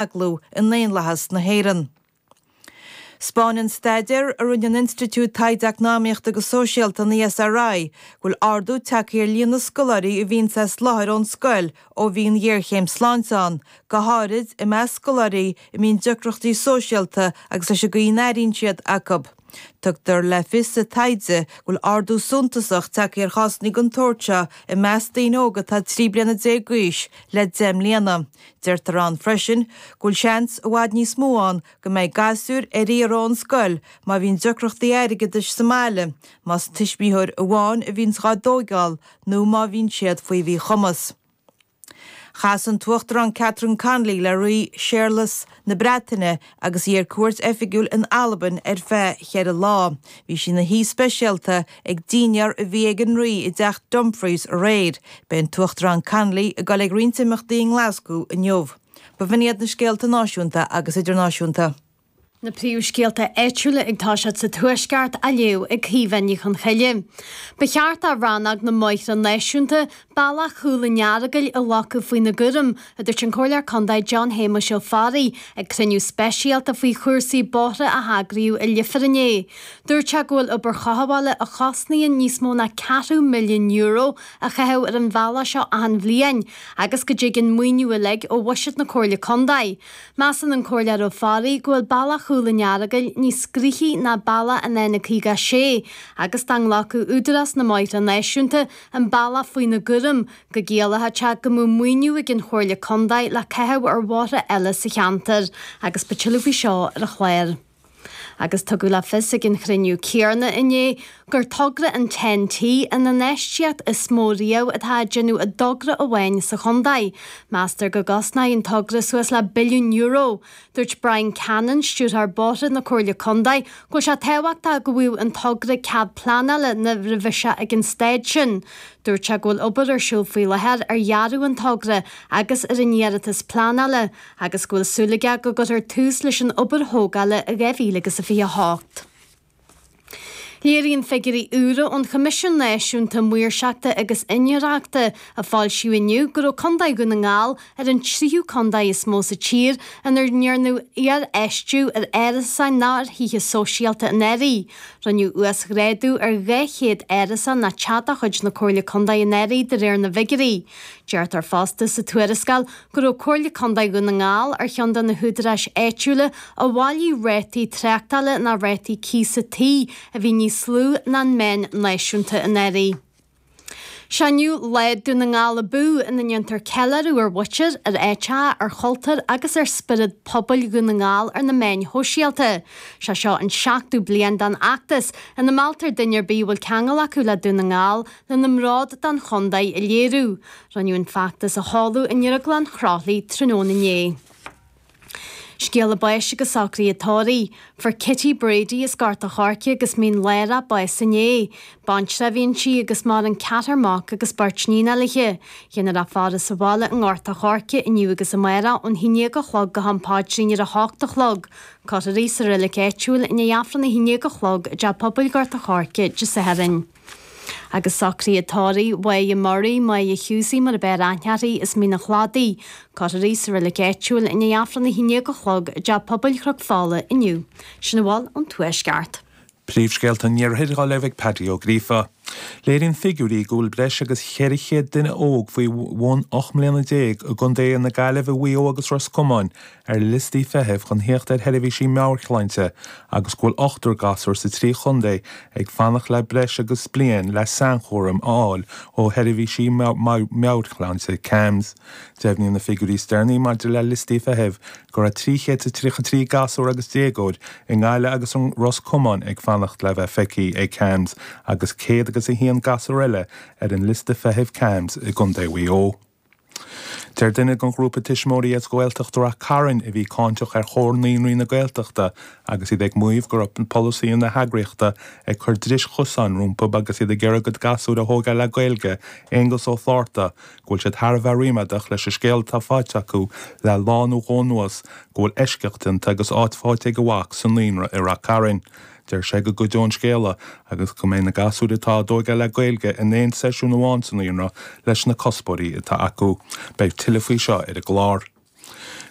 aclú i ndaonlathas na hÉireann. Spáineann staidéar a rinne an Institiúid Taighde Eacnamaíochta agus Sóisialta an ESRI go bhfuil ardú tagtha ar líon na scoláirí a bhíonns as láthair ón scoil ó bhí an ghéarchéim sláinte ann, go háirid i measc scoláirí a mbíonn deacrachtaí sóisialta agus leis an gcaoi a n-airíonn siad acu. Tugtar le fios sa taighde go bhfuil ardú suntasach tagtha ar chásanna den tsórt seo i measc daoine óga atá 13 bliana d'aois le deich mbliana. Deirtear ann freisin go bhfuil seans i bhfad níos mó ann go mbeidh gasúir ar iarraidh ón scoil má bhíonn deacrachtaí airgeadais sa mbaile, más tuismitheoir amháin a bhíonns dhá dtógáil nó má bhíonn siad faoi mhíchumas. Chas an tUachtarán Catherine Connolly le Rí Séarlas na Breataine agus í ar cuairt oifigiúil in Albain ar feadh cheithre lá. Bhí sí ina haoi speisialta ag dinnéar a bhí ag an Rí i dTeach Dumfries aréir. Beidh an tUachtarán Connolly ag dul ag roinnt imeachtaí i nGlascú inniu. B'in iad na scéalta náisiúnta agus idirnáisiúnta. na príomhscéalta áitiúla ag tosacht sa Tuaisceart á léamh ag Caoimhe Ní Choncoille. Ba cheart do rannóg na mBóithre Náisiúnta, Bealach Chúil an Earagail a ghlacadh faoina gcúram, a dúirt an Comhairleoir Contae John Shéamuis Ó Fearraigh ag cruinniú speisialta faoi chúrsaí bóithre a heagraíodh i Leifear inné. Dúirt sé go bhfuil obair chothabhála a chosnaíonn níos mó ná ceathrú milliún euro á chaitheamh ar an bhealach seo achan bhliain agus go dtig an maoiniú uilig ó bhuiséad na Comhairle Contae. Measann an Comhairleoir Ó Fearraigh go bhfuil Bealach Chúil an Earagail níos gnoithí ná Bealach an N56 agus dá nglacfadh Údarás na mBóithre Náisiúnta an bealach faoina gcúram, go gciallódh sé go mbeadh maoiniú ag an Chomhairle Contae le caitheamh ar bhóithre eile sa cheantar agus beidh tuilleadh faoi seo ar an chlár. Agus tugadh le fios ag an chruinniú céarna inné gur togra an Ten-T an infheistíocht is mó riamh atá á déanamh i dtogra amháin sa chontae. Meastar go gcosnóidh an togra suas le billiún euro. Dúirt Brian Cannon, Stiúrthóir Bóithre na Comhairle Contae, go bhfuil sé tábhachtach go bhfaigheadh an togra cead pleanála nuair a bheas sé ag an staid sin. Dúirt sé go bhfuil obair ar siúl faoi láthair ar dhearadh an togra agus ar an iarratas pleanála. agus go bhfuil súil aige go gcuirfear tús leis an obair thógála i 2028. Léiríonn figiúirí úra ón Choimisiún Náisiúnta Maoirseachta agus Iniúchóireachta, a foilsíodh inniu, go raibh contae Dhún na nGall ar an tríú contae is mó sa tír ina ndearnadh iarfheistiú ar árais nó ar thithe sóisialta anuraidh. Rinneadh uasghrádú ar 200 áras atá de chuid na Comhairle Contae anuraidh de réir na bhfigiúirí. Deirtear fosta sa tuarascáil go raibh Comhairle Contae Dhún na nGall ar cheann de na húdaráis áitiúla a bhailigh rátaí tráchtála ná rátaí cíosa tí a bhí níos lú ná an meán náisiúnta anuraidh. Seo inniu Lá Dhún na nGall Abú ina ndéantar ceiliúradh ar mhuintir, ar áiteacha, ar chultúr agus ar spiorad pobail Dhún na nGall ar na meáin shóisialta. Seo é seo an seachtú bliain den fheachtas ina mealltar duine ar bith a bhfuil ceangal acu le Dún na nGall lena mbród don chontae a léiriú. Rinneadh an feachtas a sheoladh i nDrioglann Chroithlí tráthnóna inné. Scéala báis agus socraithe tórraimh. Fuair Kitty Brady as Gort a' Choirce agus Mín Lárach bás inné. Baintreach a bhí inti agus maireann ceathrar mac agus beirt níon léithe. Déanfar í a fhaire sa bhaile i nGort a' Choirce inniu agus amárach ón haon déag a chlog go ham paidrín ar a h-ocht a chlog. Cuirfear í sa reilig áitiúil i ndiaidh Aifreann a haon déag a chlog i dTeach Pobail Gort a' Choirce Dé Sathairn. Agus socraithe tórraimh Mhaighe Murray, Maighe Hughesy mar ab fhearr aithne uirthi as Mín an Chladaigh, cuirfear í sa Reilig Áitiúil i ndiaidh Aifreann 11 a chlog i dTeach Pobail Chnoc Fola inniu. Sin a bhfuil ón Tuaisceart. Príomhscéalta an iarthair daoibh ag Páidí Ó Gríofa. Léiríonn figiúirí go bhfuil breis agus 400 duine óg faoi bhun 18 mbliana i gContae na Gaillimhe, Mhaigh Eo agus Ros Comáin ar liostaí feithimh chun theacht ar sheirbhísí meabhairshláinte agus go bhfuil ochtar gasúr sa trí chontae ag fanacht le breis agus bliain le sainchúram a fháil ó sheirbhísí meabhairshláinte CAMHS. Deimhníonn na figiúirí is deireanaí maidir le liostaí feithimh go raibh 333 gasúr agus déagóir i nGaillimh agus i Ros Comáin ag fanacht le bheith feicthe ag CAMHS agus céad agus a haon gasúr eile ar an liosta feithimh CAMHS i gcontae Mhaigh Eo. Deir duine den ghrúpa tuismitheoirí as Gaeltacht Rath Cairn a bhí cáinteach ar Chomhar Naíonraí na Gaeltachta agus iad ag maíomh go raibh polasaithe na heagraíochta ag cur dris chosáin rompu agus iad ag iarraidh a gcuid gasúir a thógáil le Gaeilge, Aonghus Ó Flatharta, go bhfuil siad thar a bheith ríméadach leis an scéal atá faighte acu le lá nó dhó anuas go bhfuil eisceacht déanta agus áit faighte ag a mhac sa naíonra i Rath Cairn. Deir sé go gcuideoidh an scéala go mbeidh na gasúir atá á dtóigeáil le Gaeilge in aon seisiún amháin sa naíonra leis na cuspóirí atá acu. Beidh tuilleadh faoi seo ar an gclár.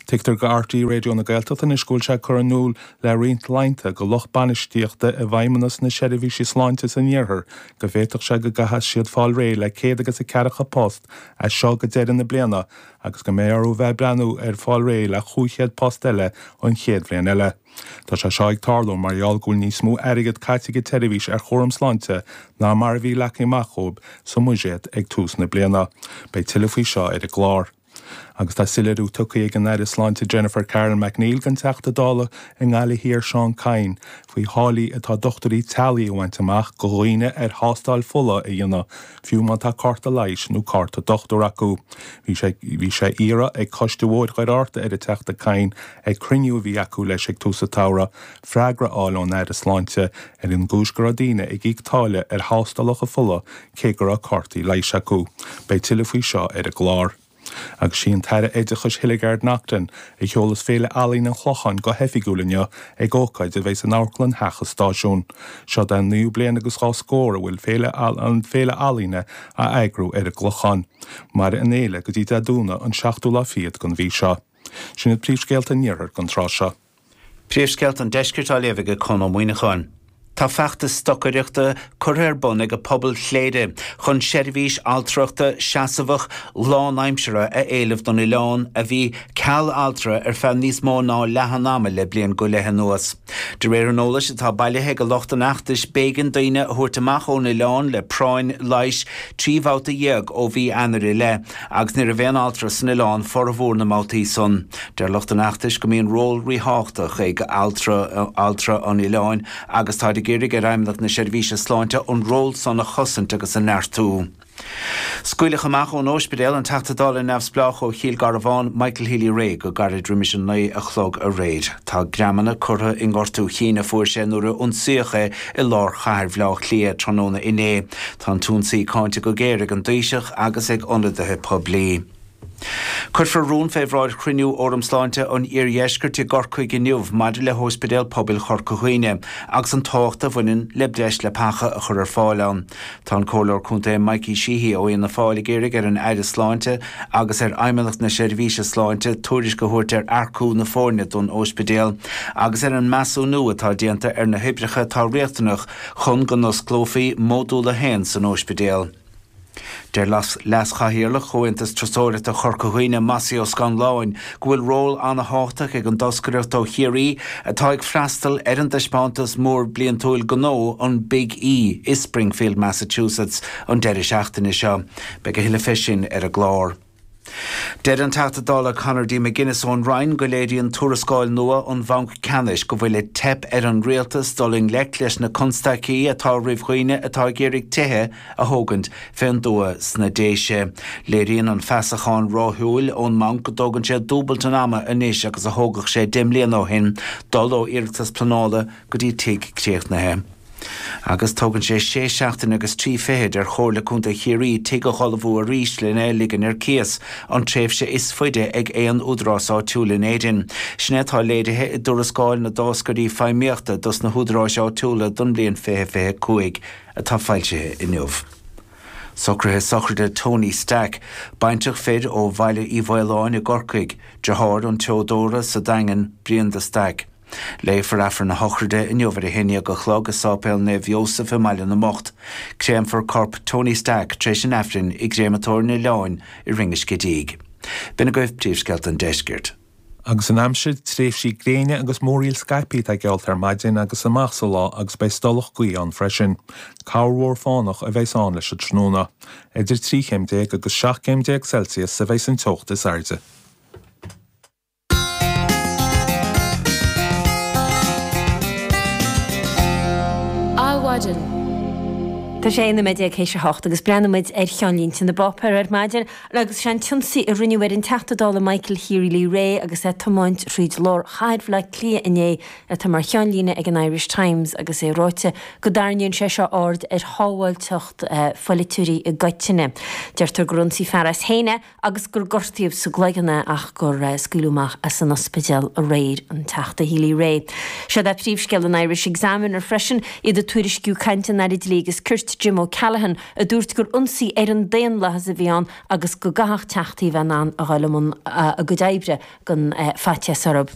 Tuigtear go RTÉ Raidió na Gaeltachta anois go bhfuil sé curtha in iúl le roinnt laethanta go lucht bainistíochta i bhfeidhmeannas na seirbhísí sláinte san iarthar go bhféadfadh sé go gcaithfeas siad fáil réidh le céad agus a ceathracha post as seo go deireadh na bliana agus go mbeidh orthu bheith ag breathnú ar fáil réidh le chúig chéad post eile an chéad bhliain eile. Tá sé seo ag tarlú mar gheall go bhfuil níos mó airgead caite ag an tseirbhís ar chúram sláinte ná mar a bhí leagtha amach dhóibh sa mbuiséad ag tús na bliana. Beidh tuilleadh faoi seo ar an gclár. Agus tá soiléiriú tugtha ag an Aire Sláinte Jennifer Carroll MacNeill don Teachta Dála i nGaillimh Thiar Seán Kyne faoi tháillí atá dochtúirí teaghlaigh a bhaint amach go dhaoine ar thástáil fola a dhéanamh fiú má tá cárta leighis nó cárta dochtúir acu. Bhí sé iarrtha ag Coiste Bhóthar Dhoire Fhearta ar an Teachta Kyne ag cruinniú a bhí acu leis ag tús an tsamhraidh freagra a fháil ón Aire Sláinte ar an gcúis go raibh daoine ag íoc táille ar thástálacha fola cé go raibh cártaí leighis acu. Beidh tuilleadh faoi seo ar an gclár. Agus sí an tAire Oideachais Hildegarde Naughton a sheolas Féile Ealaíne an Chlocháin go hoifigiúil inniu ag ócáid a bheidh san amharclann Theach an Stáisiúin. Seo é an naoú bliain agus dhá scór a bhfuil an Fhéile Ealaíne á eagrú ar an gClochán. Mairfidh an fhéile go dtí Dé Domhnaigh an seachtú lá fichead den mhí seo. Sin iad príomhscéalta an iarthair don tráth seo. Príomhscéalta an deiscirt á léamh ag Conn Ó Muíneacháin. Tá feachtas stocaireachta curtha ar bun ag pobal Chléire chun seirbhís altrachta seasamhach lánaimseartha a éileamh don oileán a bhí ceal altra ar feadh níos mó ná leath an ama le bliain go leith anuas. De réir an eolais atá bailithe ag lucht an fheachtais b'éigean daoine a thabhairt amach ón oileán le práinn leighis trí bhabhta dhéag ó mhí Eanáir i leith. Agus ní raibh aon altra san oileán formhór na mbabhtaí san. Deir lucht an fheachtais go mbíonn ról ríthábhachtach ag altra an oileáin agus táid ag iarraidh ar Fheidhmeannacht na Seirbhíse Sláinte an ról san a chosaint agus a neartú. Scaoileadh amach ón óispidéal an Teachta Dála Neamhspleách ó Chill Garbháin, Michael Healy-Rae go gairid roimis an naoi a chlog aréir. Tá greamanna curtha i ngortú cinn a fuair sé nuair a ionsaíodh é i lár chathair Bhaile Átha Cliath tráthnóna inné. Tá an t-ionsaí cáinte go géar ag an Taoiseach agus ag ionadaithe poiblí. Cuirfear rún fé bhráid chruinniú Fhóram Sláinte an Iardheiscirt i gCorcaigh inniu maidir le hÓispidéal Pobail Chorca Dhuibhne agus an tábhacht a bhaineann le breis leapacha a chur ar fáil ann. Tá an Comhairleoir Contae Mikey Sheehy ó Fhianna Fáil ag iarraidh ar an Aire Sláinte agus ar Fheidhmeannacht na Seirbhíse Sláinte tuairisc a thabhairt ar earcú na foirne don óispidéal agus ar an measúnú atá déanta ar na hoibreacha atá riachtanach chun go n-osclófaí Módúl a hAon san óispidéal. Deir Leas-Chathaoirleach Chomhaontas Turasóireachta Chorca Dhuibhne, Mossie Ó Scanláin, go bhfuil ról an-thábhachtach ag an dtoscaireacht ó Chiarraí atá ag freastal ar an dtaispeántas mór bliantúil gnó, an Big E, i Springfield, Massachusetts an deireadh seachtaine seo. Beidh a thuilleadh fé sin ar an gclár. Deir an Teachta Dála Conor D. McGuinness ón Rinn go léiríonn tuarascáil nua ón mBanc Ceannais go bhfuil ag teip ar an Rialtas dul i ngleic leis na constaicí atá roimh dhaoine atá ag iarraidh tithe a thógaint fén dtuath sna Déise. Léiríonn an feasachán ráithiúil ón mBanc go dtógann sé dúbailt an ama anois agus a thógadh sé deich mbliana ó shin dul ó iarratas pleanála go dtí tigh críochnaithe. Agus tógann sé sé seachtain agus trí fichid ar Chomhairle Contae Chiarraí tigh a dh'ullmhú arís lena ligean ar cíos an tréimhse is faide ag aon údarás áitiúil in Éirinn. Sin é atá léirithe i dtuarascáil na dtáscairí feidhmíochta dos na húdaráis áitiúla don bhliain fiche fiche a cúig atá foilsithe inniu. Socruithe Sochraide Tony Stack, baintreach fir ó Bhaile Uí Mhaoláin i gCorcaigh, deartháir an tseodóra sa Daingean, Brian de Staic. Léifear Aifreann na sochraide inniu ar a haon déag a chlog i Sáipéal Naomh Iósaf i mBaile na mBocht. Créamfar corp Tony Stack tar éis an Aifrinn i gCréamatóir an Oileáin i Rinn an Scidígh. B'in agaibh príomhscéalta an Deiscirt. Agus an aimsir, tréimhsí gréine agus múraíl scaipthe atá geallta ar maidin agus amach sa lá agus beidh stolladh gaoithe ann freisin. Ceathanna móra fánacha a bheidh ann leis an tráthnóna. Idir trí chéim déag agus seacht gcéim déag Celsius a bheidh an teocht is airde. Adhmhaidin. Tá sé ina 19 théis a hocht agus breathnóidh muid ar cheannlínte na bpáipéar ar maidin agus is é an t-ionsaí a rinneadh ar an Teachta Dála Michael Healy-Rae agus é ag tiomáint thríd lár chathair Bhaile Átha Cliath inné atá mar cheannlíne ag an Irish Times agus é ráite go dtarraingíonn sé seo aird ar shábháilteacht pholaiteoirí i gcoitinne. Deirtear gur ionsaigh fear as féin é, agus gur gortaíodh sa gcloigeann é ach gur scaoileadh amach as an ospidéal aréir, an Teachta Healy-Rae. Siúd é príomhscéal an Irish Examiner freisin, iad ag tuairisciú caint an Aire Dlí agus Cirt, Jim O'Callaghan, a dúirt gur ionsaí ar an daonlathas a bhí ann agus go gcaithfeadh teachtaí a bheith in ann a ghabháil i mbun a gcuid oibre gan faitíos orthub.